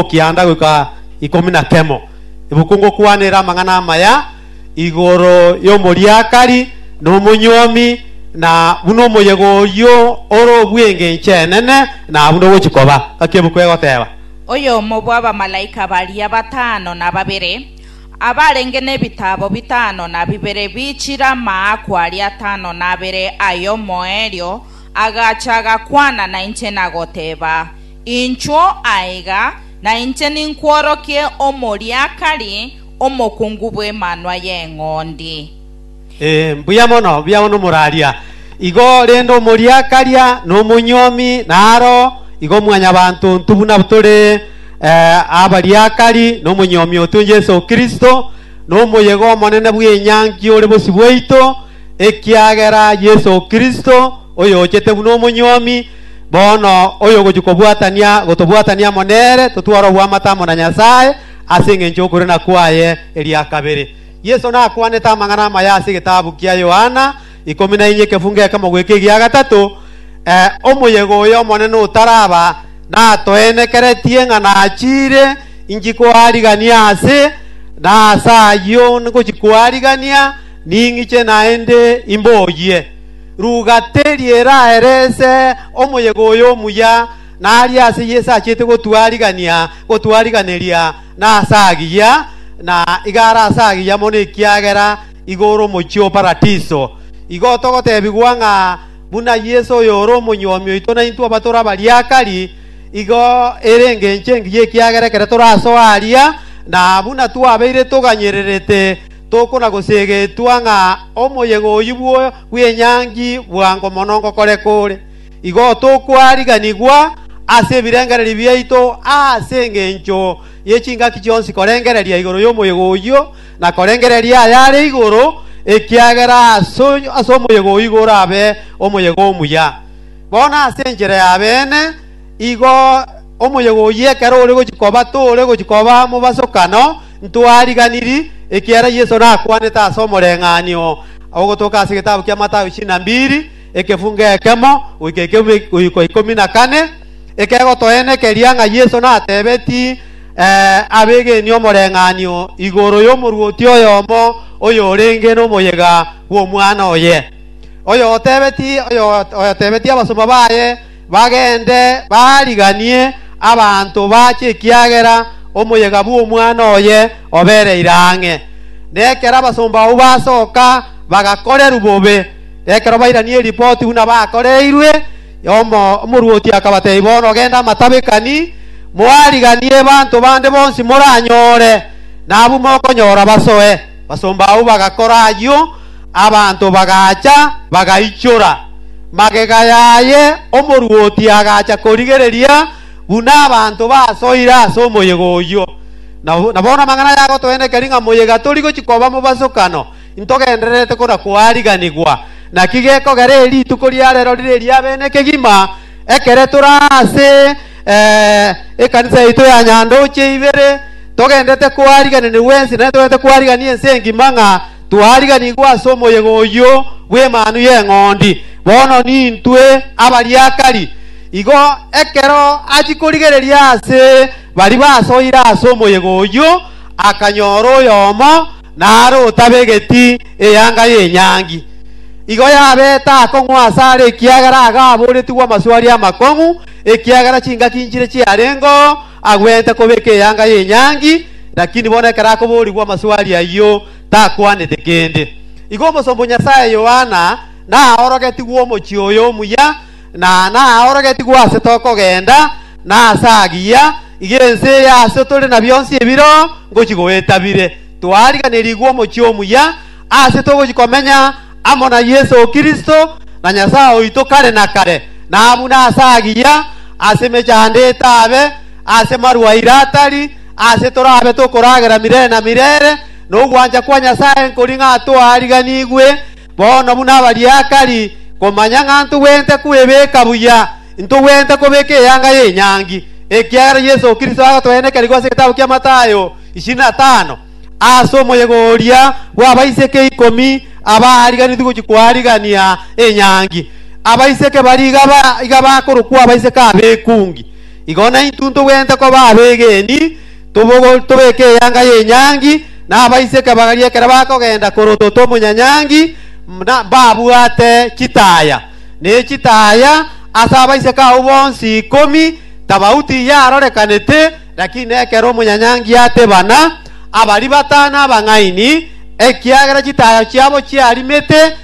Okianda goika ikomi na kemo, ibuku ngokwanera amang'ana amaya igoro y'omoriakari, na omonyuomi, na buna omoyega oyio ore obw'engencho enene, na buna ogochi koba. Gaki ebuku egoteba. Oyomo bw'abamalaika baria batano na babere, abarenge nebitaabo bitano na bibere biichire amaakwa aria atano na abere ay'omoerio, agacha agakwana nainche na goteba, Inchuo aiga, na inche ninkworokie omoriakari omokungu bw'Emanwa y'Eng'ondi. Ee, mbuya mono, mbuya mono moraria igo, rende omoriakaria na omonyomi naro igo mwanyabanto ontwe buna tore eh, abariakari na omonyomi otwe Yeso Kristo, na omoyega omonene bw'enyangi ore bosio bwaito, Ekiagera Yeso Kristo, oyochete buna omonyuomi, bono oyogochia kobwatania gotobwatania amo nere, totware obwamate amo na Nyasae ase engencho y'okorina kwaye eria kabere. Yeso nakwanete amang'ana amaya ase egetabu kia Yohana ikomi na inye ekefungo ekemo goika egia gatato, eh, Omoyega oyo omonene otaraba natoenekeretie ng'a nachiire inchi koarigania aase, na ase ayio ngochia koarigania, Ning'iche naende imboyie. Rugate ri'era erese omoyega oyo omuya, na aria ase Yeso achiete gotwarigania gotwariganeria nase agiya, na igare ase agiya mono ekiagera igoro omochie o Paradiso. Igo togotebigwa ng'a buna Yeso oyore omonyuomi oito naintwe abatora bariakari, igo ere engencho engiya ekiagera ekero torasoa aria, na buna twabeire toganyererete, Tokona goseegetwa ng'a omoyega oyio bw'enyangi bwango mono ngokoreka ore. Igo tokwariganigwa ase ebirengererio biaito ase engencho ye chingaki chionsi korengereria igoro y'omoyega oyio, na korengereria ayare igoro, ekiagera ase omoyega oyio igo orabe omoyega omuya. Bono ase enchera y'abeene, igo omoyega oyio ekero ore gochia koba tore gochia koba mobasokano, Ntwariganiri ekiagera Yeso nakwanete ase omoreng'anio ogotoka ase egetabu kia Mathayo chinambiri, ekefungo ekemo goika ekeumi goika ikomi na kane, ekegotoenekeria ng'a Yeso natebeti eh, abegeni omoreng'anio igoro y'omorwoti oyomo oyorenge nomoyega bw'omwana oye. Oyotebeti oyo- oyotebeti abasomba baye Bagende baariganie abanto baache ekiagera omoyega bw'omwana oye obereire ang'e. Na ekero abasomba abwo basoka bagakorerwa bobe, ekero bairania eripoti buna bakoreirwe, omoruoti akabatebia, Bono genda amatabekani, moariganie abanto bande bonsi moranyore, na abwo mokonyora basoe. Basomba abwo bagakora ayio. Abanto bagacha bagaichora magega yaye, omoruoti agacha korigereria buna abanto basoire ase omoyega oyio. Na bono amang'ana aya agotoenekeria ng'a moyega tori gochia koba mobasokano, intogendererete kona koariganigwa. Naki gekogera ere rituko ria rero rire eria bene kegima, ekere tore ase ekanisa yaito ya Nyandoche Ibere, togendererete koariganigwa ense, naende togendererete koarigania ense engima ng'a Twariganigwe ase omoyega oyio bw'Emanu y'Eng'ondi, bono nintwe abariakari. Igo ekero achia korigereria aase baria basoire ase omoyega oyio, akanyora oyomo nare otabegeti eyanga y'enyangi. Igo yabeta akong'u aase are ekiagera agaaboretigwe amaswari amakong'u, ekiagera chingaki nchire chiarengeo. Agwenerete kobeka eyanga y'enyangi, lakini bono ekero akoboorigwa amaswali ayio, takwanete kende. Igo omosomba o Nyasae Yohana naorogetigwe omochie oyo omuya, na naorogetigwe aase tokogenda, na aase agiya, iga ense eye ase tore na bionsi ebiro ngochi goetabire. Twariganerigwe omochie omuya, aase togochia komenya amo na Yeso Kristo na Nyasae oito kare na kare, na buna ase agiya ase emechando etaabe, ase marwaire atari, aase torabe tokoragera mirere na mirere, na ogwancha kwa Nyasae nkori ng'a toariganigwe, bono buna abariakari, komanya ng'a ntogwente kwebeka buya, ntogwente kobeka eyanga y'enyangi, ekiagera Yeso Kristo agotoenekerigwa ase egetabu kia Matayo ishirini na tano. Aase omoyega oria bw'abaiseke ikomi abaariganitie gochia koarigania enyangi, abaiseke baria iga ba- iga bakorokwa abaiseke ab'ekungi. Igo naintwe ntogwenerete koba abegeni, tobogo- tobeke eyanga y'enyangi, na abaiseke baria ekero bakogenda korotota omonyanyangi m- na- mbabwate chitaya, ne chitaya ase abaiseke abwo bonsi ikomi, tabauti yarorekanete, Lakini ekero omonyanyangiya atebana, abaria batano abang'aini, ekiagera chitayo chiabo chiarimete,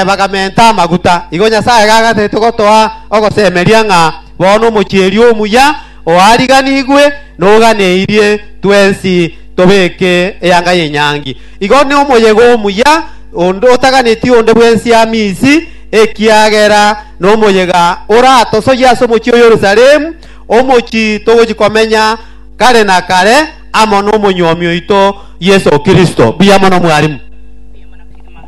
bagamenta amaguta. Igo Nyasae gagateete gotoa ogosemeria ng'a bono omochie-eri omuya oariganigwe noganeirie twensi tobeke eyanga y'enyangi. Igo nomoyega omuya, onde otaganeti onde bwensi ame isi, ekiagera nomoyega oratosoyie ase omochie o Yerusalemu. omochie togochia komenya kare na kare amo n'omonyuomi oito Yeso Kristo. Mbuya mono mwarimu. Mbuya mono kegima.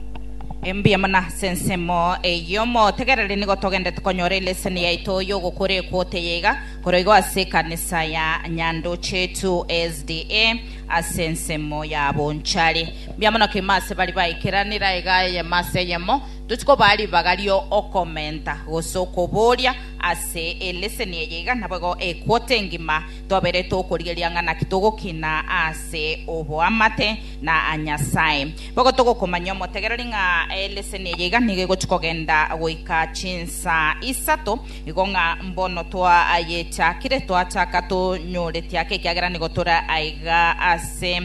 E, mbuya mono ase ensemo eyio. Motegerere, nigo togendete konyora eleseni yaito y'ogokora ekwote eye iga, korwa igo ase ekanisa ya Nyandochetu SDA, ase ensemo ya bonchari. Mbuya mono kegima ase baria baikeranire aiga eyemo ase eyemo. Tochia kobaa ribaga ri'okomenta gose okoboria, Ase eleseni eye iga naboigo equota engima twabeire togokorigereria ng'a naki togokina ase oboamate na Nyasae. Boigo togokomanyia omotegereri ng'a eleseni eye iga nigo egochia kogenda goika chinsa isato igo ng'a mbono twayechakire twachaka tonyoreti ake ekiagera nigo tore aiga ase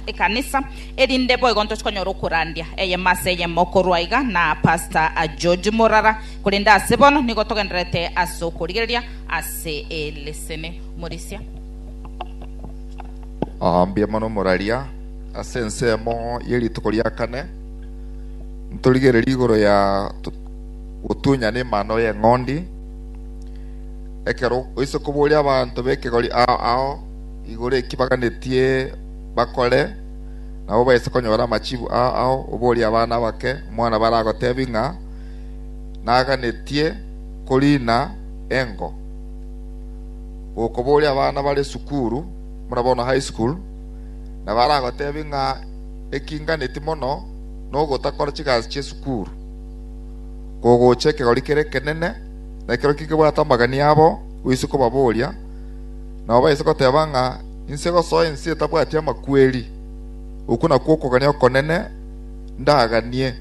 ekanisa erinde boigo ntoche konyora okorandia eyemo ase eyemo korwa iga na Pastor George Murara Korende ase bono nigo togendererete ase okorigereria ase elisini. Omorisia. Aa, mbuya mono moraria. Ase ensemo ye rituko ria kane, ntorigererie igoro ya gotunya nemano y'eng'ondi. Ekero oise koboria abanto b'ekegori ao ao igoro eki baganetie bakore, nabo baise konyora amachibu ao ao, oborie abana abake omwana baragotebi ng'a, naganetie koriina engo. Gokoboria abana bare sukuru buna bono high school, na baragotebie ng'a eki nganetie mono nogotakora chigasi chie sukuru, kogocha ekegori kere ekenene, na ekero kekebwate amagani abo oise kobaboria, nabo baise goteba ng'a inse gosoa ense etabwati amakweri. Okwo nakwo okogania okonene ndaganie.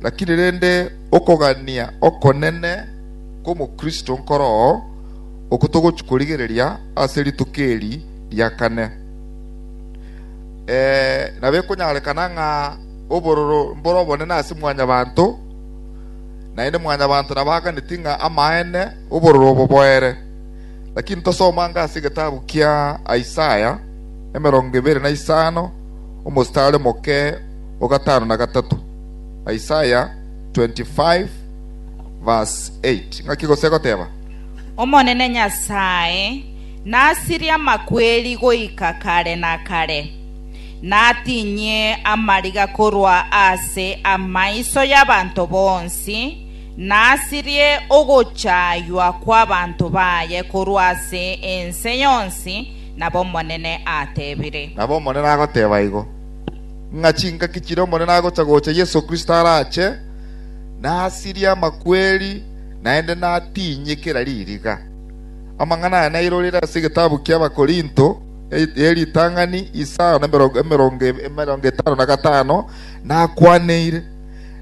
Lakini rende okogania okonene kw'omokristo nkoro oo, oko togochia korigereria ase rituko eri ria kane. Ee, nabekonyarekana ng'a obororo mbore obonene ase mwanyabanto, naende mwanyabanto nabo aganeti ng'a amaene obororo obo boere. Lakini tosoma ng'a ase egetabu kia Isaya, emerongo ebere na isano, omostari omoke, o gatano na gatato. Isaya 25 verse 8. Ng'aki gose egoteba? Omonene Nyasae nasirie amakweri goika kare na kare, natinye amariga korwa ase amaiso y'abanto bonsi, nasirie ogochaywa kw'abanto baye korwa ase ense yonsi, nabo Omonene atebire. Nabo Omonene agoteba igo. ng'a chingaki chiria Omonene agocha gocha Yeso Kristo arache, nasirie amakweri, naende natinye kera ririga. Amang'ana aya nairorire ase egetabu ki'Abakorinto, eria ritang'ani isao na emerongo etano na gatano, nakwaneire.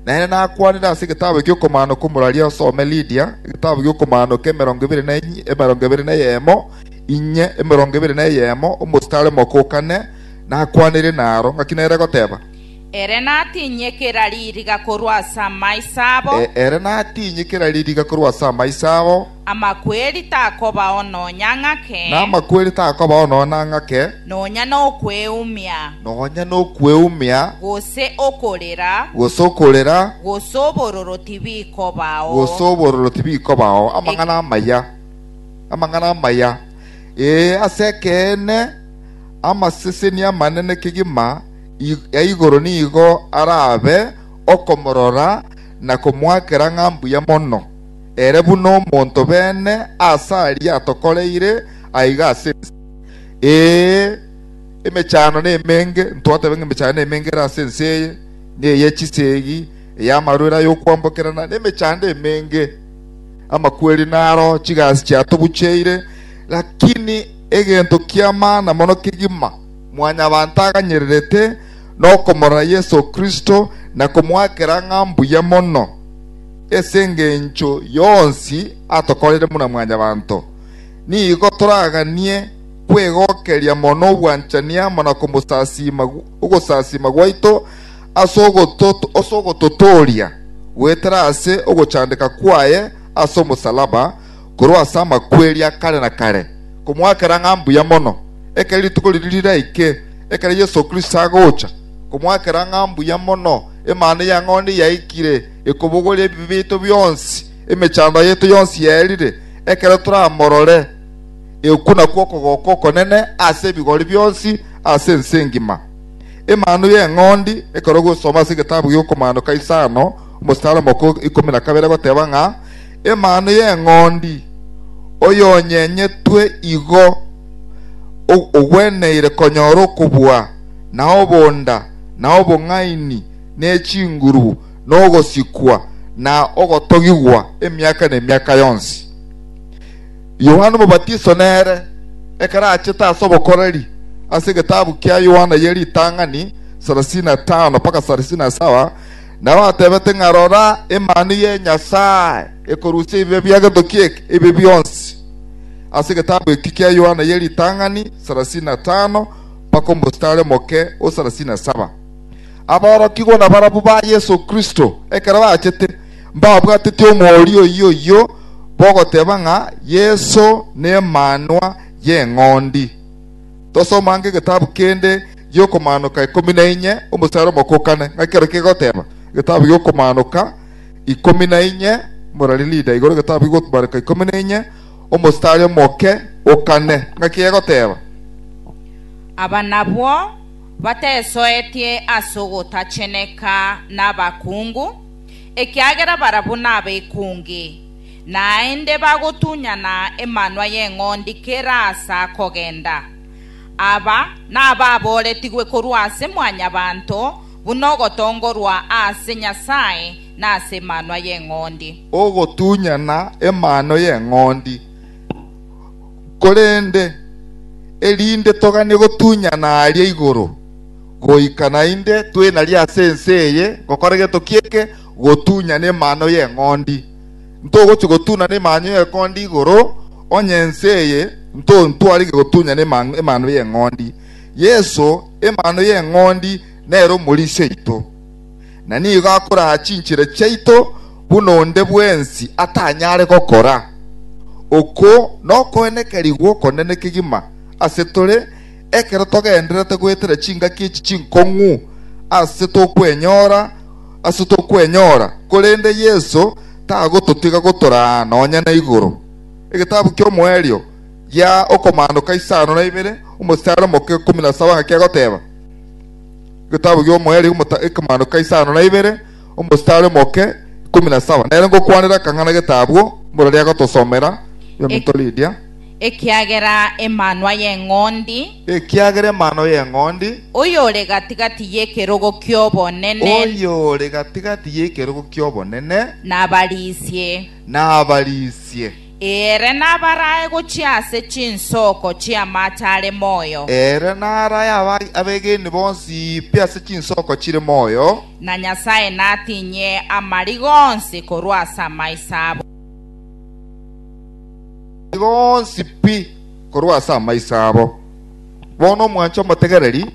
Naende nakwanire ase egetabu gi'okomano kw'omoraria osome Lidia, egetabu gi'okomano k'emerongo ebere na eyemo, inye, emerongo ebere na eyemo, omositari omoko o kane, Nakwaneire naro, ngaki nere goteba, Ere natinye kera ririga korwa ase amaiso abo, Ere natinye kera ririga korwa ase amaiso abo, amakweri takobao nonya ng'ake, na amakweri takobao nonya ng'ake, nonya nokweumia, nonya nokweumia, gose okorera, gose okorera, gose obororo tibikobao. gose obororo tibikobao. Amang'ana amaya, amang'ana amaya, ee, ase ekeene. amaseseni amanene kegima ya igoro nigo arabe okomorora na komoakera ng'a mbuya mono, ere buna omonto bene aase aria atokoreire aiga ase ense. Ee, emechando nemenge, ntwateba ng'a emechando nemenge ere ase ense eye, na eye chisegi, ey'amarwere ay'okwambokerana, na emechando emenge. Amakweri naro, chigasi chiatobucheire, lakini egento ki'amana mono kegima mwanyabanto aganyererete nokomorora Yeso Kristo na komoakera ng'a mbuya mono ase engencho yonsi atokoreire buna mwanyabanto. Nigo toraganie kwegokeria mono obwanchani amo na komosasiima ogosasiima gwaito ase ogototooria goetera ase ogochandeka kwaye ase omosalaba korwa ase amakweri a kare na kare, komoakera ng'a mbuya mono, ekero rituko riria riraike, ekero Yeso Kristo agocha, komoakera ng'a mbuya mono, Emana ya Ng'ondi yaikire, ekobogoria ebibe biaito bionsi, emechando yaito yonsi yaerire, ekero toramorore, ekuna kw'okogoko okonene ase ebigori bionsi ase ense engima. Emanu y'Eng'ondi ekero ogosoma ase egetabu gi'okomaanoka Isano, omositari omoko ikomi na kabere goteba ng'a, emanu y'eng'ondi, oyonyenyetwe igo, ogweneire konyora okobua, na obonda, na obong'aini, ne chinguru, na ogosikwa, na ogotogigwa emiaka nemiaka yonsi. Yohana Omobatiso nere, ekero achete ase obokoreri, ase egetabu kia Yohana ye ritang'ani 35-37, Nao atebete ng'a, Rora, emani ye Nyasae ekorusia ebibe bi'egetoki eke, ebi bionsi. Ase egetabu eke kia Yohana ye ritang'ani sarasini na tano mpaka omostari omoke o sarasini na saba. Aborokigwa nabarabwo ba Yeso Kristo, ekero bachete, mbabwateti omoorio oyio oyio bogoteba ng'a Yeso nemanwa y'eng'ondi. Tosomanga egetabu kende gi'Okomaanoka ikomi na inye, omochare omokokane ng'aki ekero kegoteba, Egetabu gi'Okomaanoka ikomi na inye, morari rida igoro egetabu gi'Okomaanoka ikomi na inye, omochare omoke okane ng'aki egoteba? Aba nabwo batesoetie ase ogotacheneka nabakungu, ekiagera barabwo nabekungi. Naende bagotunyana emanwa y'eng'ondi kera aase akogenda. Aba nababooretigwe korwa ase Mwanyabaanto, buna ogotongorwa ase Nyasae na ase emanwa y'eng'ondi. Ogotunyana emanwa y'eng'ondi. Korende erinde toganie gotunyana aria igoro goika naende twenari ase ense eye, gokora gento ki'eke, gotunyana emano y'eng'ondi. Ntogochia gotunana emano y'eng'ondi igoro, onye ense eye ntontwarigwe gotunyana emano y'eng'ondi. Yeso, emano y'eng'ondi nere omorisia oito, na nigo akoraa chinchera chiaito buna onde bwensi atanyare gokora. Oko nokoenekerigwa okonene kegima ase tore. Ekero togendererete goetera chingaki echi chinkong'u ase tokwenyora ase tokwenyora, korende Yeso tagototiga gotoraa nonya na igoro. Egetabu ki'Omoerio gia Okomandoka isano na ibere, omosare omoka ikomi na saba ng'a kegoteba, Egetabu ki'Omoerio Okomandoka isano na ibere, omosare omoke ikomi na saba. Nere ngokwanera akang'ana getabu, mborere agotosomera, Yominto Lydia. Ekiagera Emanwa y'Eng'ondi. Ekiagera Emanwa y'Eng'ondi. Oyore gati-gati y'ekerogo ki'obonene. Oyore gati-gati y'ekerogo ki'obonene. Nabarisie. Nabarisie. Ere nabarae gochia ase chinsoko chi'amache are moyo. Ere narae abegeni bonsi pi ase chinsoko chire moyo. Na Nyasae natinye amariga onsi korwa ase amaiso abo. nigo onsi pi korwa ase amaiso abo. Bono omwanche omotegereri,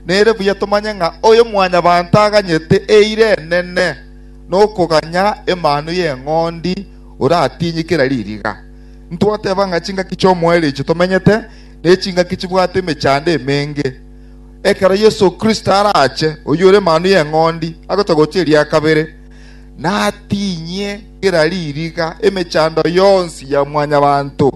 nere buya tomanye ng'a Oyomwanyabanto aganyete eira enene na okoganya Emanwa y'Eng'ondi oratinyie kera ririga. Ntwateba ng'a chingaki chi'omoerio tomenyete nechingaki chibwate emechando emenge. Ekero Yeso Kristo arache, oyio ore Emanwa y'Eng'ondi, agocha gochia eria kabere, natinyie kera ririga, emechando yonsi ya mwanyabanto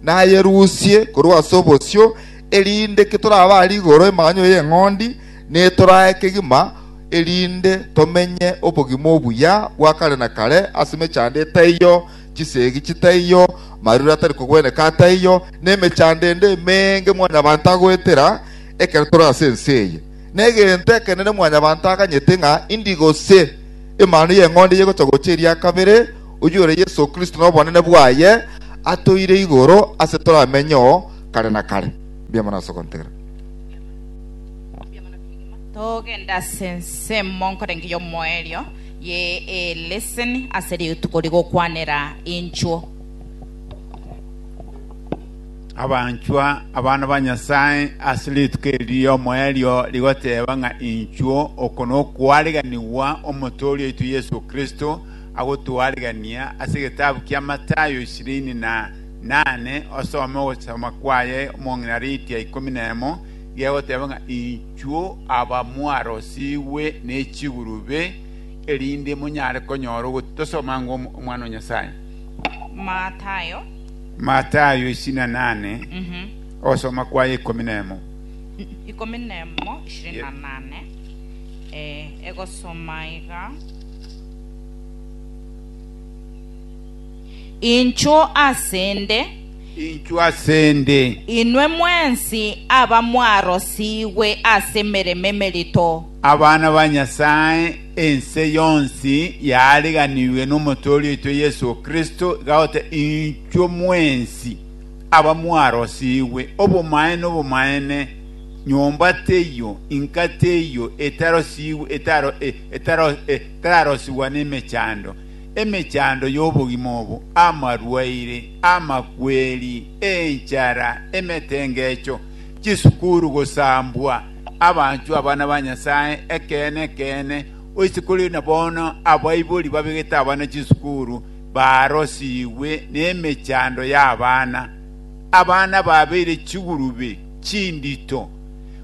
nayerusie korwa ase obosio, erinde ketorabare igoro emanyo y'eng'ondi, ne torae kegima, erinde tomenye obogima obuya bwa kare na kare ase emechando etaiyo, chisegi chitaiyo, marure atari kogweneka ataiyo, nemechando ende emeenge mwanyabanto agoetera ekero tore ase ense eye. Negento ekenene mwanyabanto aganyete ng'a indi gose Emanu y'Eng'ondi yegocha gocha eria kabere, oyio ore Yeso Kristo nobonene bwaye, atoire igoro ase toramenyeo kare na kare. Mbiama nase ogontera. Togende ase ensemo nkorenge y'omoerio ye eleseni ase rituko rigokwanera inchuo. Abanchwa, abana ba Nyasae, ase rituko eri ri'omoerio rigoteba ng'a inchuo, oko nokwaariganigwa Omotooria oito Yeso Kristo agotwarigania, ase egetabu kia Matayo ishirini na nane osome ogosoma kwaye omong'ina riitia ikomi na emo, gegoteba ng'a inchuo abamwarosigwe ne chigurube, erinde monyare konyora ogotosa omwango omwana o Nyasae. Matayo. Matayo isini na nane, ogosoma kwaye ikomi na emo. Ikomi na emo, ishirini na nane, eh, egosoma aiga. Inchuo asende, Inchuo asende, inwe mwensi abamwarosigwe ase emeremo emerito. abana ba Nyasae, Ense yonsi yaariganigwe n'Omotoori oito Yeso Kristo, iga goteba, Inchwe mwensi abamwarosigwe obomaene obomaene, nyomba teiyo, inka teiyo etarosigwe etararosigwa nemechando, emechando y'obogima obo, amarwaire, amakweri, enchara, emetengecho, chisukuru gosambwa, abanchwa, abana ba Nyasae ekeene ekeene, oise kore na bono abaibori babegete abana chisukuru barosigwe nemechando y'abana. Abana babeire chigurube chindito,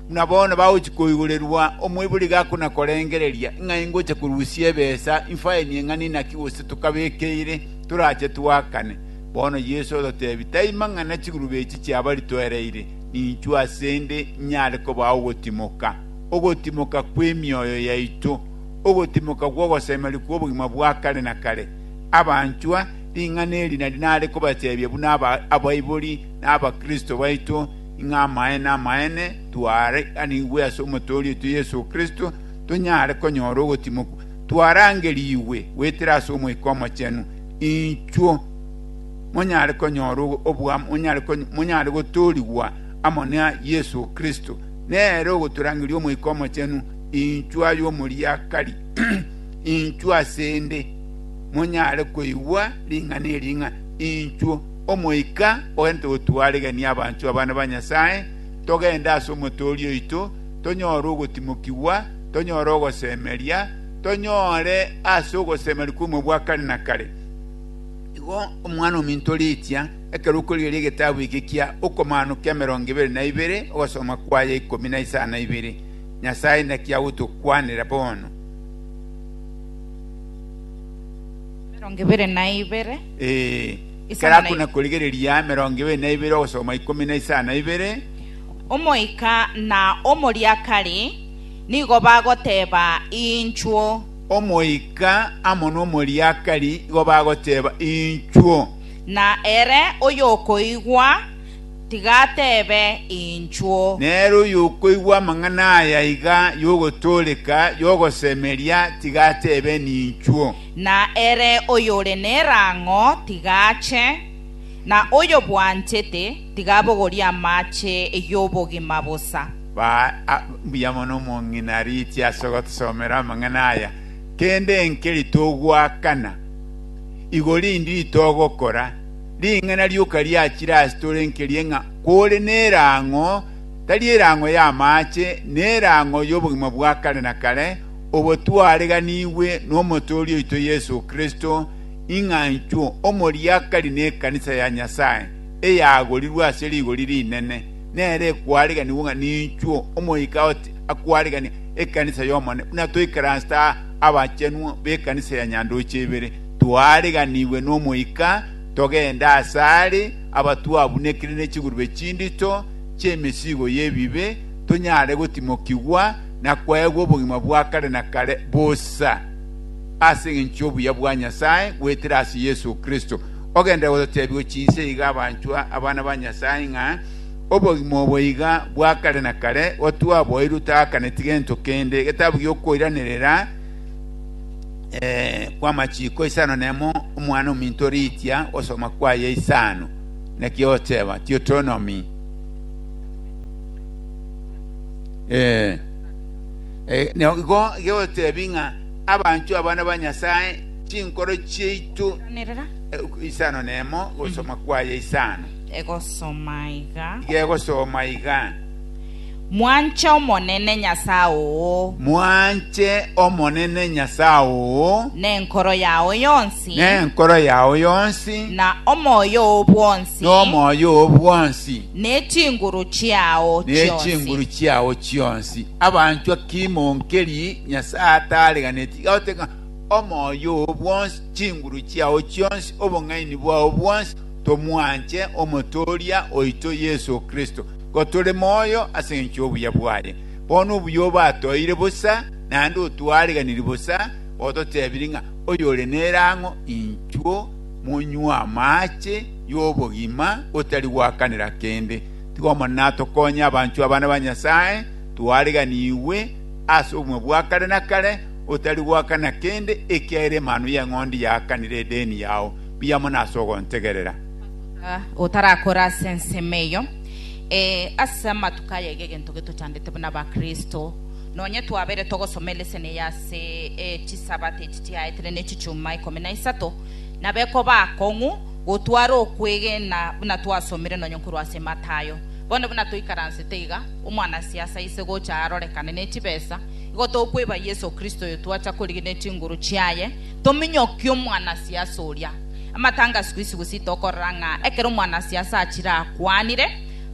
buna bono bagochia koigorerwa omoibori gakonakorengereria ng'a ingocha korusia ebesa, infaini eng'ani naki gose tokabekeire, torache twakane. Bono Yeso ototebia, Taima ng'a na chigurube echi chiabaritwereire, Ninchwe asende nyare kobao ogotimoka, ogotimoka kw'emioyo yaito, ogotimoka gw'ogosemeria kw'obogima bwa kare na kare. Abanchwa, ring'ana eri nari nare kobachebia buna abaibori na abakristo baito, ing'a amaene amaene twaaranigwe ase Omotooria oito Yeso Kristo, tonyare konyora ogotimokwa twarangerigwe goetera ase Omoika Omochenu. Inchwo. monyare konyora oboamo, monyare monyare gotoorigwa amo na Yeso Kristo, nere ogotorangeria Omoika Omochenu, inchwe aye omoriakari, inchwe asende monyare koigwa ring'ana eria ng'a inchwe Omoika ogente gotwaregenia abanchwa abana ba Nyasae, togende ase omotoori oito, tonyore ogotimokigwa, tonyore ogosemeria, tonyore ase ogosemeria kw'omoyo bwa kare na kare. Igo Omwana-o-minto oriitia ekeruku erio ri'egetabu eke kia okomaanu k'emerongo ebere na ibere ogosoma kw'aya ikomi na isano na ibere. Nyasae naki agotokwanera bono. Emerongo ebere na ibere, Ee, Isano ekero na akona ibere. korigereria emerongo ebere na ibere ogosoma ikomi na isano na ibere, Omoika na omoriakari nigo bagoteeba inchuo. Omoika amo nomoriakari igo bagoteba, Inchuo. Na ere oyokoigwa, tiga atebe, Inchuo. Nere oyokoigwa amang'ana aya iga y'ogotooreka, y'ogosemeria, tiga atebe, Ninchuo. Na ere oyore nerang'o, tiga ache, na oyobwanchete, tiga abogorie amache y'obogima bosa. Ba mbuya mono omong'ina Ariti ase ogotosoomera amang'ana aya. Kende enkeri togoakana, igo rindi ritogokora. Ring'ana rioka riachire ase tore nkerie ng'a kore nerang'o, tari erang'o y'amaache, na erang'o y'obogima bwa kare na kare, obo twareganigwe n'Omotooria oito Yeso Kristo, ing'a inchuo omoriakari nekanisa ya Nyasae, eyagorirwe ase rigori rinene. nere ekwariganigwa ng'a ninchwo Omoika ote akwarigania ekanisa y'Omonene, buna toikaransete abachenwa b'ekanisa ya Nyandoche Ibere, twariganigwe n'Omoika, togende asare abatwabunekire ne chigurube chindito chi'emesigo y'ebibe, tonyare gotimokigwa na kwaegwa obogima bwa kare na kare bosa ase engencho y'obuya bwa Nyasae goetera ase Yeso Kristo. Ogende gototeebigwe chinse iga abanchwa, abana ba Nyasae, ng'a obogima obo iga bwa kare na kare gotwaboeirwe togaakaneti gento kende. Egetabu gi'okoiranerera kw'amachiko isano nemo Omwana ominto riitia gosoma kwaye isano, naki ogoteeba Deuteronomy. Igo igo otebi ng'a abanchwa abana ba Nyasae chinkoro chiaito Kwanirira. eh, isano nemo gosoma kwaye isano Egosoma iga. iga egosoma iga Mwanche Omonene Nyasae oo mwanche omonene nyasaye oo nenkoro yao yonsi nenkoro yao yonsi na omoyo oo bwonsi n'omoyo oo bwonsi nechinguru chiao nechinguru chionsi. chiao chionsi abanchwa kimonkeri nyasaye atareganeti goteka omoyo oo bwonsi, chinguru chiao chionsi, obong'aini bwao bwonsi, tomwanche Omotooria oito Yeso Kristo, nigo tore moyo ase engencho y'obuya bwaye. Bono obuya obatoeire bosa, naende otwaariganirie bosa, ototebirie ng'a oyore nere ang'o, inchuo monywe amaache y'obogima otari gwakanera kende. Tiga Omonene atokonye abanchwa abana ba Nyasae, twaariganigwe ase obogima bwa kare na kare, otari goakana kende ekiagera emanu y'eng'ondi yaakanire edeni yao biamo nase ogontegerera. Ase otarakore ase ensemo eyo, ee, ase amatuko aya iga egento getochandete buna Abakristo, nonye twabeire togosoma eleseni eye ase chisabato echi chiaetire ne chichuma ikomi na isato, nabekoba akong'u gotwara okwegena buna twasomire nonye korwa ase Matayo. Bono buna toikaransete iga, omwanasiasa aise gocha arorekane ne chibesa, Igo tokweba Yeso Kristo oyo twacha korigina chinguru chiaye, tominyokie omwanasiasa oria. Amatanga siku isiku si tokorora ng'a ekero omwanasiasa achire akwanire,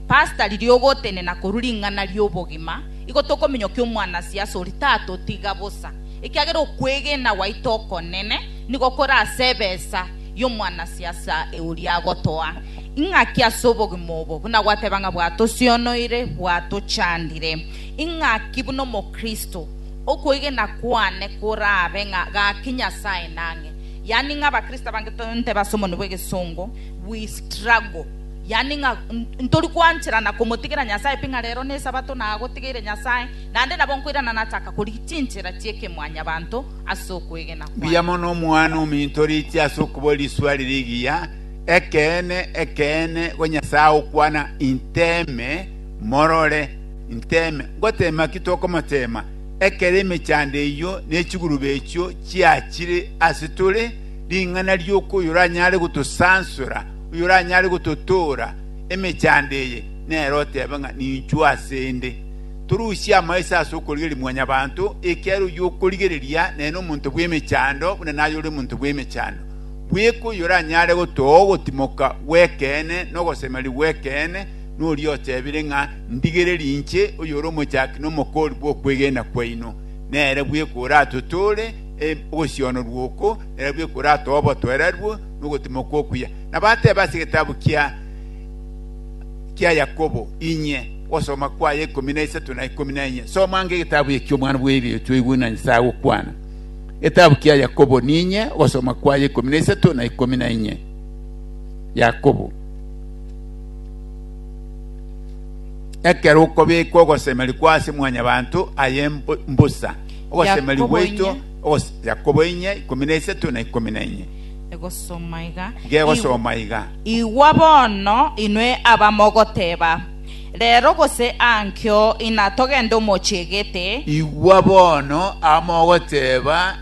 Pastor riria ogotenena korwa ring'ana ri'obogima, igo tokominyokia omwanasiasa oria tatotiga bosa, ekiagera okwegena gwaito okonene nigo kore ase ebesa y'omwanasiasa oria agotoa. Ing'aki ase obogima obo, buna gwateba ng'a bwatosionoire, bwatochandire. Ing'aki buna Omokristo, okwegena kwane korabe ng'a gaki Nyasae nang'e. Yaani ng'a Abakristo abange tonteba ase omonwa bw'egesongo, we struggle. Yaani ng'a ntori kwanchera na komotigera Nyasae pi ng'a rero n'Esabato nagotigeire Nyasae, naende nabo nkoirana nachaka korigia chinchera chi'ekemwanyabanto ase okwegena kwane. Mbuya mono omwana ominto riiche ase okobua risuari rigiya, Ekeene, ekeene, go Nyasae agokwana, Inteme, morore. Nteeme! Ngoteema ki tokomoteema, ekero emechando eyio ne chigurube echio chiachire ase tore, ring'ana rioka oyoranyare gotosansora, oyoranyare gototoora emechando eye, nere oteebe ng'a ninchwo ase 'nde? Torusie amaiso ase okorigereria Mwanyabaanto, ekiagera oyio okorigereria nere nomonto bw'emechando buna naye ore omonto bw'emechando. Bweka oyoranyare gotooa ogotimoka gw'ekeene na ogosemeria gw'ekeene, noria otebire ng'a ndigereri inche oyore omochaki na omokoori bw'okwegena kwaino, nere bweka oratotoore ogosionorwa oko, nere bweka oratoe obotoerarwe na ogotemoka okuya. Na bateba ase egetabu kia kia Yakobo, Inye, ogosoma kwaye ikomi na isato na ikomi na enye. Soma ange egetabu ekio omwana bw'erio twaigwe ng'a Nyasae agokwana. Egetabu kia Yakobo, Ninye, ogosoma kwaye ikomi na isato na ikomi na enye. Yakobo. Ekero okobeka ogosemeria kwao ase mwanyabanto, aye mbosa ogosemeria gwaito, Yakobo inye, ikomi na isato na ikomi na inye. Gegosoma iga. Igwa bono, inwe abamogoteba, Rero gose ankio, inatogende omochie gete. Igwa bono, abamogoteba,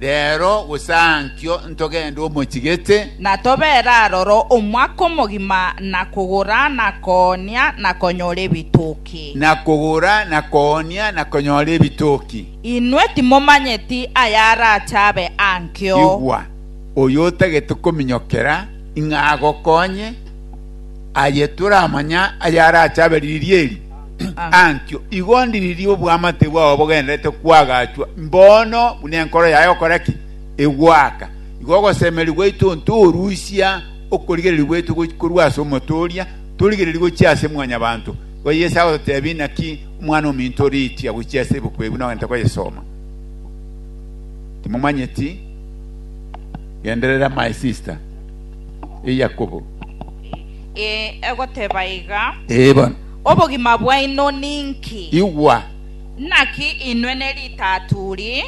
Reero bosankio ntogende omochigete. Na tobeere aroro omwaka omogima na kogora na koonia na konyora ebitoki. Na kogora na koonia na konyora ebitoki. Inwe timomanyeti ayarache abe ankio. Igwa, oyo otagete kominyokera ing'agokonye, aye toramanya ayarache abe riiri eri. Antio igo ndiririe obwamate bwao bogendererete kwagachwa, mbono buna enkoro yaye ogokora ki? Egoaka. Igo ogosemeria gwaito onto orusia okorigereria gwaito korwa ase omotooria, torigereria gochia ase mwanyabanto. Igo Yeso agototebia, Inaki omwana ominto oriitia gochia ase ebuku eye buna ogentete koyesoma? Timomanyeti? Genderera my sister, e Yakobo. Ee, egoteba iga. Ee, bono. Obogima bwaino ninki? Igwa! Naki inwe neritaturi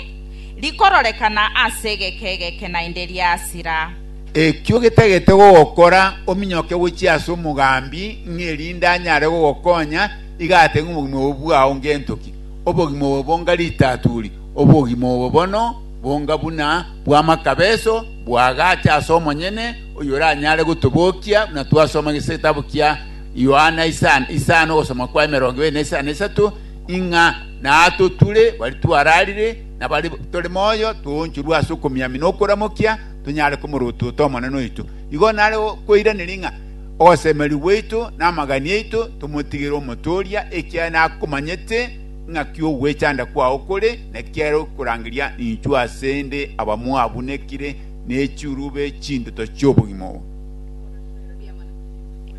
rikororekana ase egeke egeke naende riasira. Ekio getagete gogokora ominyoke gochia ase omogambi, ng'a erinde anyare gogokonya, iga ate ng'a obogima obo bwao ngento ki? Obogima obo bonga ritaturi, obogima obo bono bonga buna bw'amakabeso, bwagacha ase omonyene, oyio oranyare gotobokia, buna twasoma ase egetabu kia Yohana isano ogosoma kwa emerongo ebere na isano na isato, ing'a natotwire baria twararire na baria tore moyo toonchorwe ase okomiamia na okoramokia, tonyare komorotote Omonene oito. Igo nare kweiraneri ng'a ogosemeria gwaito na amagani aito tomotigere Omotooria, ekiagera nakomanyete ng'a ki ogwechanda kwao kore, na kiagera okorangeria ninchuo ase 'nde abamwabunekire ne chirube chinduto chi'obogima obo.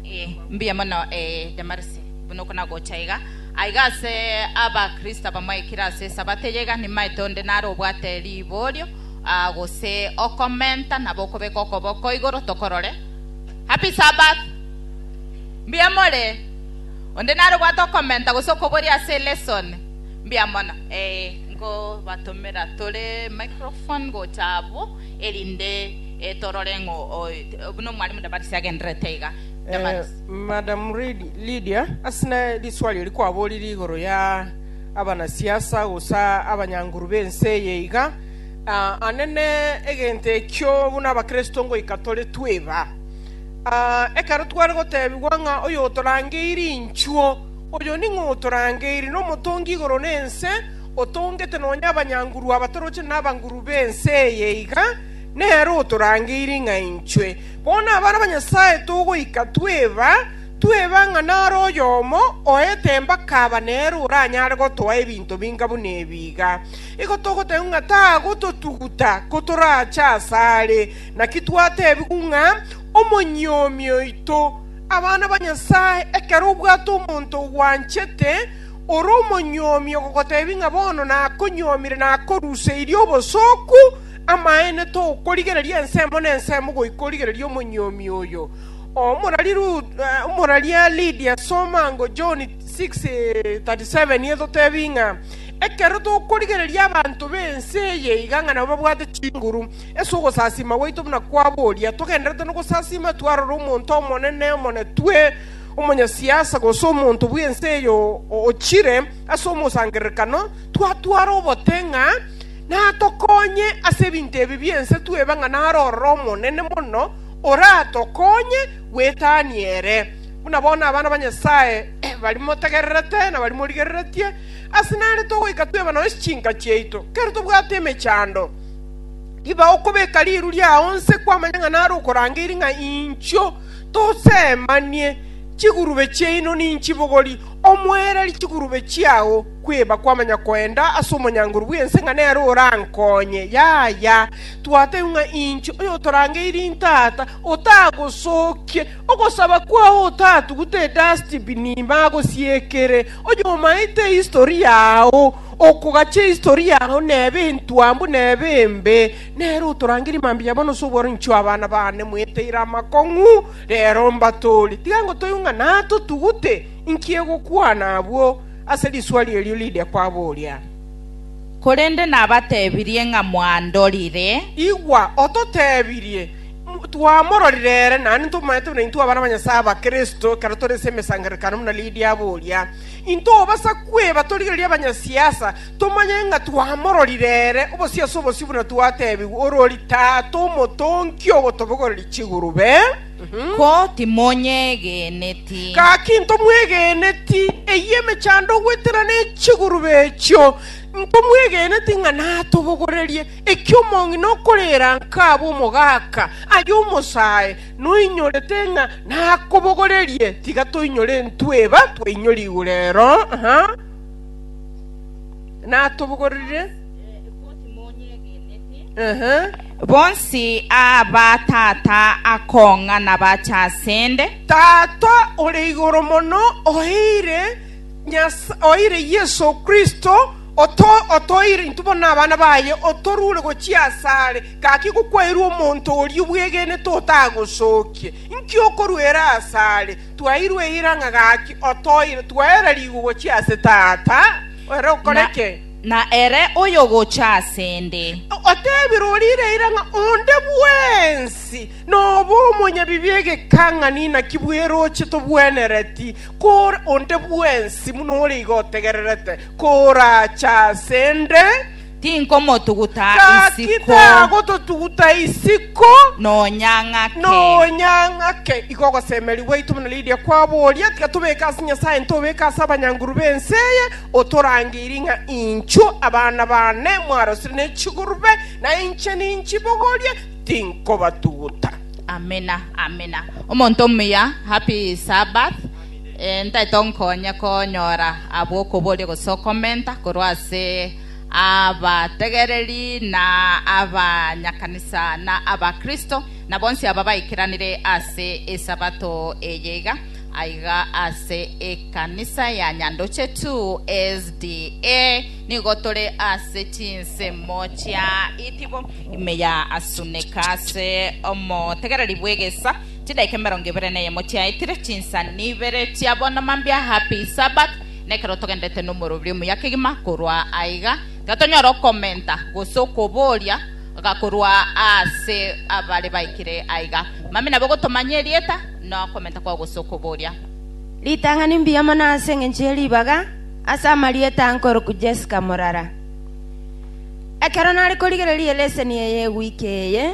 Eh, mbuya mono eh, Damarisi, buna oko nagocha iga. Aiga ase abakristo abamoikire ase esabato eye iga, nimaete onde nare obwate riborio ah, gose okomenta nabo okobeka okoboko igoro tokorore. Happy Sabbath! Mbuya more. Onde nare obwate okomenta gose okoboria ase lesson. Mbuya mono. Eh, nkobatomera tore microphone gocha abwo. erinde torore ng'o buna omwalimu Damaris agendererete iga. Eh, Damaris. Madam Lid- Lydia, ase na riswari eri kwaborire igoro ya abanasiasa gose abanyanguru b'ense eye iga, ah, anene egento ekio buna abakristo ngoika tore tweba. Ah, ekero tware gotebigwa ng'a oyotorangeiri inchuo, oyo ning'o otorangeiri? Nomotongi igoro na ense, Otongete nonya abanyanguru abatoroche na abanguru b'ense eye iga, nere otorangeiri ng'a inchwe bono abana ba Nyasae togoika tweba tweba ng'a nare oyomo oete embaka aba nere oranyare gotoa ebinto binga buna ebi iga. Igo togotebigwa ng'a tagototuguta kotorache asare, naki twatebigwa ng'a omonyuomi oito, abana ba Nyasae, ekero obwate omonto ogwanchete, Ore omonyuomi ogogoteebia ng'a bono nakonyuomire na akoruseirie obosooku, amaene tokorigereria ensemo na ensemo goika origererie omonyuomi oyo. Omoraria Lydia, soma ango John 6:37, etotebia ng'a ekero tokorigereria abanto b'ense eye iga ng'a nabo babwate chinguru ase ogosasiima gwaito buna kwabo oria, togendererete nogosasiima twarora omonto omonene omonetwe, Omonyasiasa gose omonto bw'ense eye ochire ase omosangererekano twatware obote ng'a natokonye ase ebinto ebi bi'ense twebe ng'a nare ororo omonene mono oratokonye gwetania ere. Buna bono abana ba Nyasae baria motegererete na baria morigereretie, ase nare togoika twebe nonya chinka chiaito. Kera tobwate emechando, riba okobeka riiru riao onse kwamanya ng'a nare okorangeirie ng'a inchuo. tosemanie chigurube chiaino ninchibogori, omoereri chigurube chiao kweba kwamanya koenda ase omonyango ore bw'ense ng'a nere orankonye. Yaya, twatebia ng'a inche oyotorangeire intata otagosokie ogosaba kwao otatugute edustbin ime agosiekere oyomaete ehistory yao okogacha ehistory yao nebe entwambu nebe embe Nere otorangerie mambia bono ase obworo inchuo abana baane mweteire amakong'u rero mbatoori. Tiga ngotoigwe ng'a natotugute inki egokwana abwo ase riswari erio riria kwaboria. Korende nabatebirie ng'a mwandorire. Igwa, ototebirie, Twamororire ere, naende ntomaete buna intwe abana ba Nyasae aba Kristo ekero tore ase emesangererekano buna Lidia aboria. Intobasa kweba torigereria abanyasiasa, Tomanye ng'a twamororire ere obosio ase obosio buna twatebigwe, orori Tata omotonki ogotobogoreria chigurube. Ko timonyegeneti? Gaki ntomwegeneti, eyio emechando ogwetera ne chigurube echio, ntomwegeneti ng'a natobogorerie. Ekio omong'ina okorera nkaabwe omogaka, aye omosae, noinyorete ng'a nakobogorerie, tiga toinyore intwe eba twainyore igurero. natobogorire Ehe. Bonsi aba tata akong'a nabache asende, Tata ore igoro mono oeire Nyas- oeire Yeso Kristo oto- otoire intwe bono abana baye otorure gochia asare gaki gokwaerwe omonto oria obwegenete otagosokie inki okoruera asare Twairwe eira ng'a gaki otoire, twaera rigo gochia ase Tata, ere okore ki? Na ere oyogocha ase 'nde. Otebire orire eira ng'a onde bwensi nobe omonyabibi egekang'ani, naki bweroche tobwenereti kore onde bwensi buna ore igo otegererete, korache ase 'nde. Tinkomotuguta Gaki isiko tagototuguta isiko nonya ng'ake. nonya ng'ake. Igo ogosemeria gwaito buna Lidia kwaboria, tiga tobeke ase Nyasae ntobeke ase abanyanguru b'ense eye, otorangeirie ng'a inchuo abana baane mwarosire ne chigurube, na inche ninchibogorie, tinkobatuguta. Amina, amina. Omonto omuya, happy Sabbath. Eh, ntaete onkonye konyora abwo okoboria gose okomenta korwa ase abategereri, na abanyakanisa, na abakristo, na bonsi aba baikeranire ase Esabato eye iga, aiga ase ekanisa ya Nyandoche tu, SDA, nigo tore ase chinsemo chia itibo ime ya Asuneka ase omotegereri bw'egesa, chidaika emerongo ebere neyemo chiaetire, chinsani ibere chia bono mambia Happy Sabbath, na ekero togenderete nomorobio omuya kegima korwa aiga, tiga tonyora okomenta gose okobooria iga korwa ase abare baikire aiga. Mambia nabo gotomanya erieta na okomenta kwao gose okobooria. Ritang'ani mbuya mono ase engencho ye ribaga ase amarieta ankoroku Jessica Morara. Ekero nare korigereria eleseni eye ewiki eye,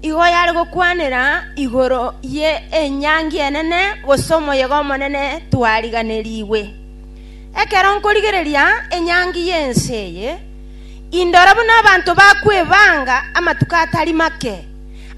Igo yare gokwanera igoro ye enyangi enene gose omoyega omonene twariganerigwe. Ekero nkorigereria enyangi y'ense eye, indora buna abanto bakwebanga amatuko atari make,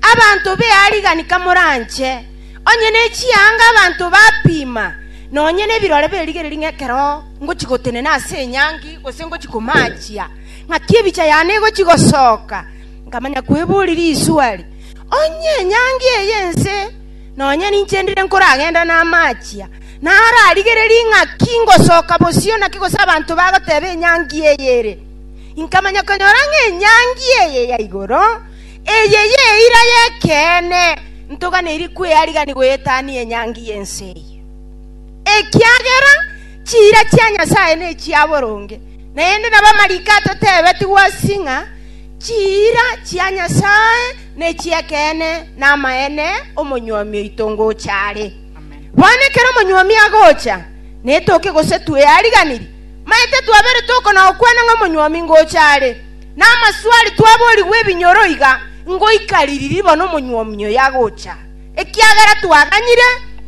abanto b'earigani kamoranche, onye ne chianga abanto bapima, nonya nebirore berigereria ng'a ekero ngochia gotenena ase enyangi gose ngochia komaachia, ng'aki ebicha yane egochia gosoka. Nkamanya kweboria risuali, Onye enyangi eye y'ense nonya ninche ndire nkoragenda namachia, nararigererie ng'aki ngosoka bosio naki gose abanto bagoteba enyangi eye ere? Nkamanya konyora ng'a enyangi eye ya igoro, eye y'eira y'ekeene, ntoganeiri kwearigania goyetania enyangi y'ense eye. Ekiagera chiira chia Nyasae nechia boronge, naende nabamalaika totebetigwe ase ng'a Chiira chia Nyasae nechi'ekeene, na amaene omonyuomi oito ngocha are. Bono ekero omonyuomi agocha, netoke gose tweariganiri? Maete twabere toko na gokwana ng'a omonyuomi ngocha are, na amaswari twaborigwe ebinyoro iga ngoika ririri bono omonyuomi oyo agocha, ekiagera twaganyire,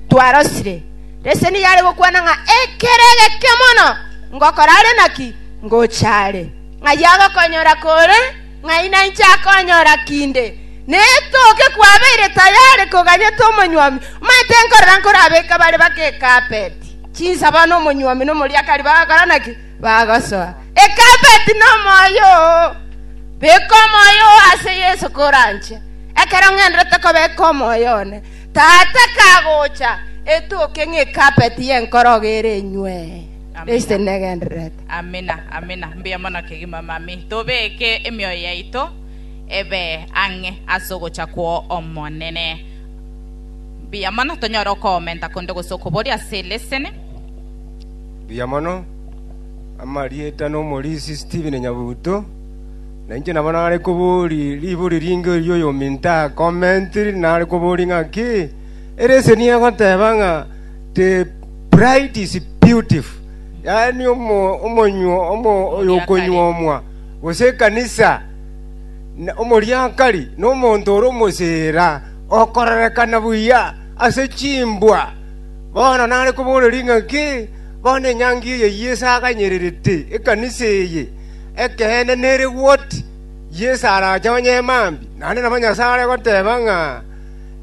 twarosire. Reseni yare gokwana ng'a ekero egeke mono ngokora are naki ngocha are. Ng'ai agokonyora kore, ng'ai nainche akonyora kinde. Netoke kwabeire tayari koganyeta omonywami, omanyete nkorora nkorabeke bare bake ekapeti, chinsaba nomonywami nomoriakari bagakora naki? Bagosoa. Ekapeti nomoyo oo. Beka omoyo oo ase Yeso koranche. Ekero ng'enderete kobeka omoyo one, Tata kagocha, etoke ng'ekapeti y'enkorogo ere enywe. Kristo Amina. negendererete. Amina, amina. Mbuya mono kegima, mami. Tobeke emioyo yaito ebe ang'e ase ogocha kw'o Omonene. Mbuya mono, tonyore okoomenta konde gose okoboria ase eleseni. Mbuya mono. Amarieta n'omorisia Stephen Nyabuto. Na inche nabo nare kobori ribori ringe erio oyominto akomentiri nare kobori ng'a ki? Eleseni egoteba ng'a The bride is beautiful, yaani omo- omonyuo omo- oyokonyuomwa, gose ekanisa, na- omoriakari nomonto ore omosira, okororekana buya ase chimbwa. Bono nare koboreria ng'a ki? Bono enyangi eye Yeso aganyererete ekanisa eye, ekeene nere goti, Yeso arache onye mambia, naende nabo Nyasae are goteba ng'a,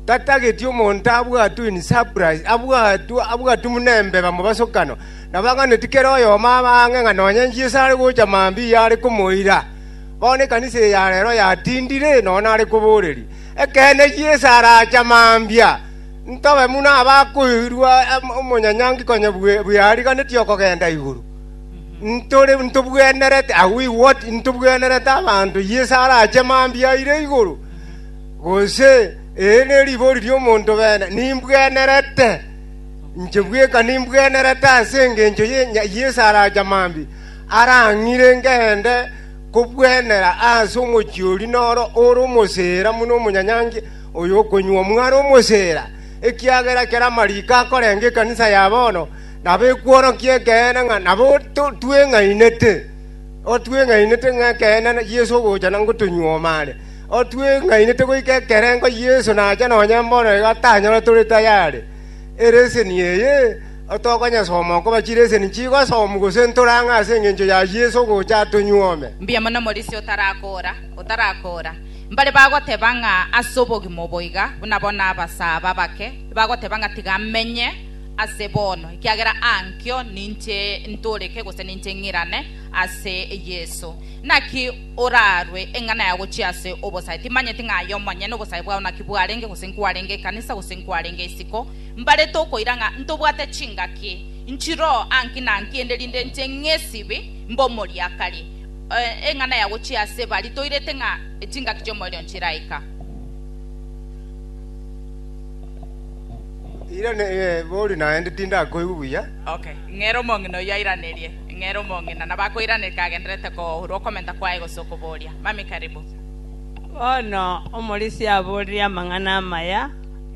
Tatageti omonto abwatwe in surprise, abwatwe, abwatwe buna embeba mu basokano. Nabo ang'anetie kera oyomo abe ang'e ng'a nonye Yeso are gocha mambia are komoira. Bono ekanisa eye ya rero yatindire, nonya nare koboreria, Ekeene Yeso aracha mambia. Ntobe buna abakoirwa omonyanyaanki konya bweariganeti okogenda igoro. Ntore, ntobwenerete, are we what, ntobwenerete abanto Yeso arache mambia aire igoro? Gose, Ere neribori ri'omonto bene, nimbwenerete, inche bweka nimbwenerete ase engencho y'esaracha mambia, arang'ire ngende kobwenera ase omochie oria noro ore omosera buna omonyanyaankia oyo okonywa omwaro omosera. Ekiagera ekero amariko akorenga ekanisa ya bono, nabo ekworokia ekeene ng'a nabo tweng'ainete ng'a ekeene Yeso ogocha na ngotonyuoma are. Otweng'ainete goika ekerengo Yeso nacha nonya mbono iga tanyora tore taya are. Ereseni eye otokonyesoma okoba chireseni chigosomu gose ntore ang'e ase engencho ya Yeso ogocha atonyuome. Mbuya mono Morisi otarakoora, otarakoora. Mbare bagoteba ng'a ase obogima obo iga buna bono abasaaba abake bagoteba ng'a tiga amenye ase bono, ekiagera aankio ninche ntooreke gose ninche ng'irane ase Yeso. Naki oraarwe eng'ana ya gochia ase obosae, timanyeti ng'a aye omonyene obosae bwao naki bwarenge, gose nkwarenge ekanisa, gose nkwarenge isiko, mbarete okoira ng'a ntobwate chingaki nchiroo anki na anki, ende rinde nche ng'esibi mbe omoriakari. Eng'ana ya gochia ase bari toirete ng'a chingaki chi'omoerio nchiraika. Irane, eh, bori naende tindakoigwe buya. Okay, ng'ere omong'ina oyio airanerie. Ng'a ere omong'ina na bakoiraneria agenderete koorwa okomenta kwaye gose okobooria, Mami, karibu. Bono omorisia aboorire amang'ana amaya,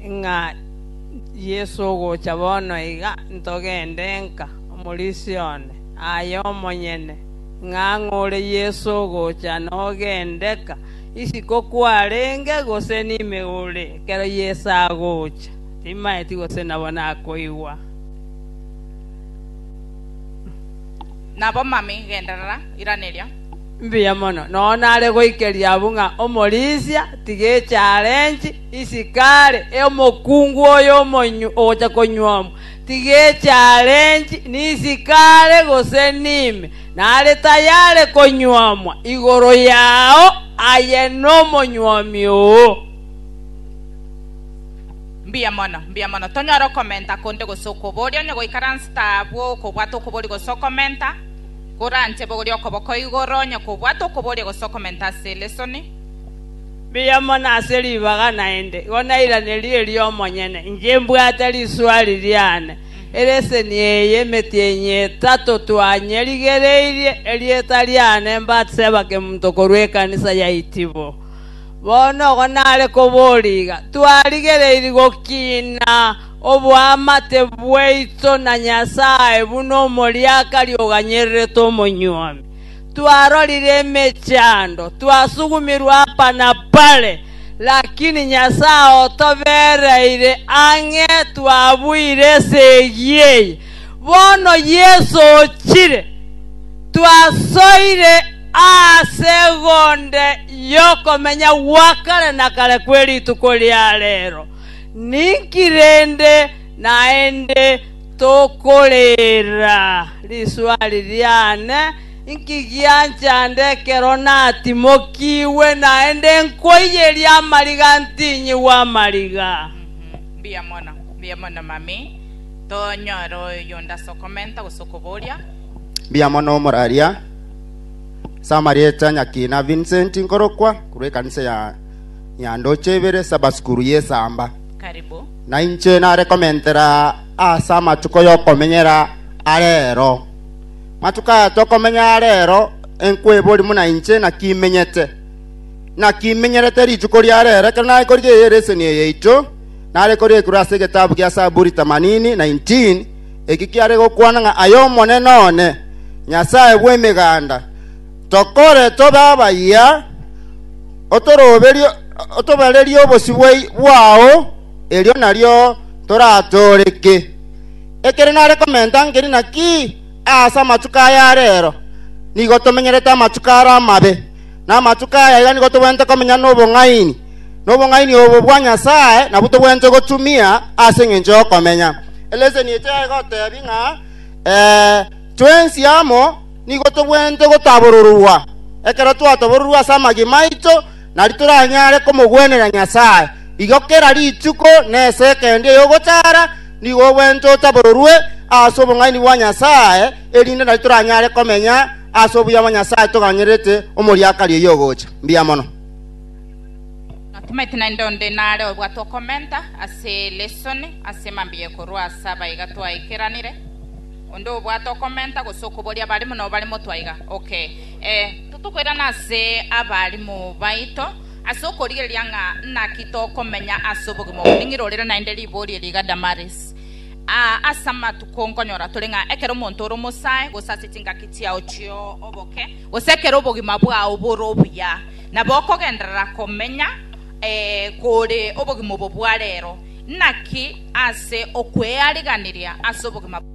ng'a Yeso ogocha bono iga, ntogende nka omorisia one aye omonyene, ng'a ang'o ore Yeso ogocha nogende ka, isiko kwarenge gose nime ore, ekero Yeso agocha timaeti gose nabo nakoigwa. Nabo mami, genderera, iraneria. Mbuya mono. Nonya nare goikeria abwo ng'a omorisia tiga echarenji isiko are, omokungu oyo omonyu ogocha konyuomwa tiga echarenji nisiko are gose nime, nare tayare konyuomwa igoro yao aye nomonyuomi oo. Mbuya mono, mbuya mono. Tonyore okomenta konde gose okoboria, onye goikaransa tabwo okobwata okoboria gose okomenta, koranche bogorie okoboko igoro, onye kobwata okoboria gose okomenta ase elesoni. Mbuya mono ase ribaga naende, igo nairaneria erio omonyene, inche mbwate risuari riane. Eleseni eye emetienyi etato twanyerigereirie, erieta riane Batseba Kemunto korwa ekanisa ya Itibo. Bono ogo nare koboria iga, Twarigereiri gokiina oboamate bwaito na Nyasae buna omoriaka riogo anyererete omonyuomi. Twarorire emechando, twasugumirwe apa na pare, lakini Nyasae otobereire ang'e twabuire esegi eye. Bono Yeso ochire, twasoire aase egonde y'okomenya gwa kare na kare kwe rituko ria reero. Ninki rende naende tokoreera? Risoa ririane, inki gianchande ekero natimokigwe naende nkoiyeria amariga ntinyigwa amariga? Tonyore oyonde ase okomenta gose okoboria. Mbuya mono omoraria. Ase amarieta Nyakina Vincent nkorokwa korwa ekanisa ya Nyandoche ibere Sabasukuru y'Esamba. Karibu. Nainche nare komentera ase amatuko y'okomenyera arero. Matuko aya tokomenya arero enkwebori muna inche naki menyete. Naki menyerete rituko riarero ekero naikorigia eye leseni eye yaito. nare korekurwa ase egetabu gia Saburi themanini, 19, eki kiare gokwana ng'a aye Omonene one, Nyasae bw'emeganda, tokore tobe abayia, otoroberie, otobarerie obosio bwai- bwao, erio nario toratooreke. Ekero nare komenta nkeri naki aase amatuko aya arero, nigo tomenyerete amatuko are amabe. na amatuko aya iga nigo tobwenerete komenya nobong'aini, na obong'aini obo bwa Nyasae nabwo tobwenerete gotumia ase engencho y'okomenya. Eleseni eria egoteebia ng'a ee, twensi amo nigo tobwenerete gotabororwa. Ekero twatabororwa ase amagima aito, nari toranyare komogwenera Nyasae. Igo kera rituko na esegi eende y'ogotaara nigo obwenerete otabororwe ase obong'aini bwa Nyasae, erinde nari toranyare komenya Ase obuya bwa Nyasae toganyererete omoriakari oyio ogocha. Mbuya mono. Natomete naende onde nare obwate okomenta ase lesson ase mambia ekorwa ase abaiga twaikeranire. Onde obwate okomenta gose okoboria abalimu nabo bare motwe aiga? Ok. Eh, totokoirana ase abalimu baito ase okorigereria ng'a naki tokomenya ase obogima oboning'irorire naende ribori eri iga Damaris. Aa ase amatuko nkonyora tore ng'a ekero omonto ore omosae, gose ase chingaki chiao chi'oboke, gose ekero obogima bwao bore obuya, nabo okogenderera komenya kore obogima obo bwa reero, naki ase okweariganiria ase obogima bwao.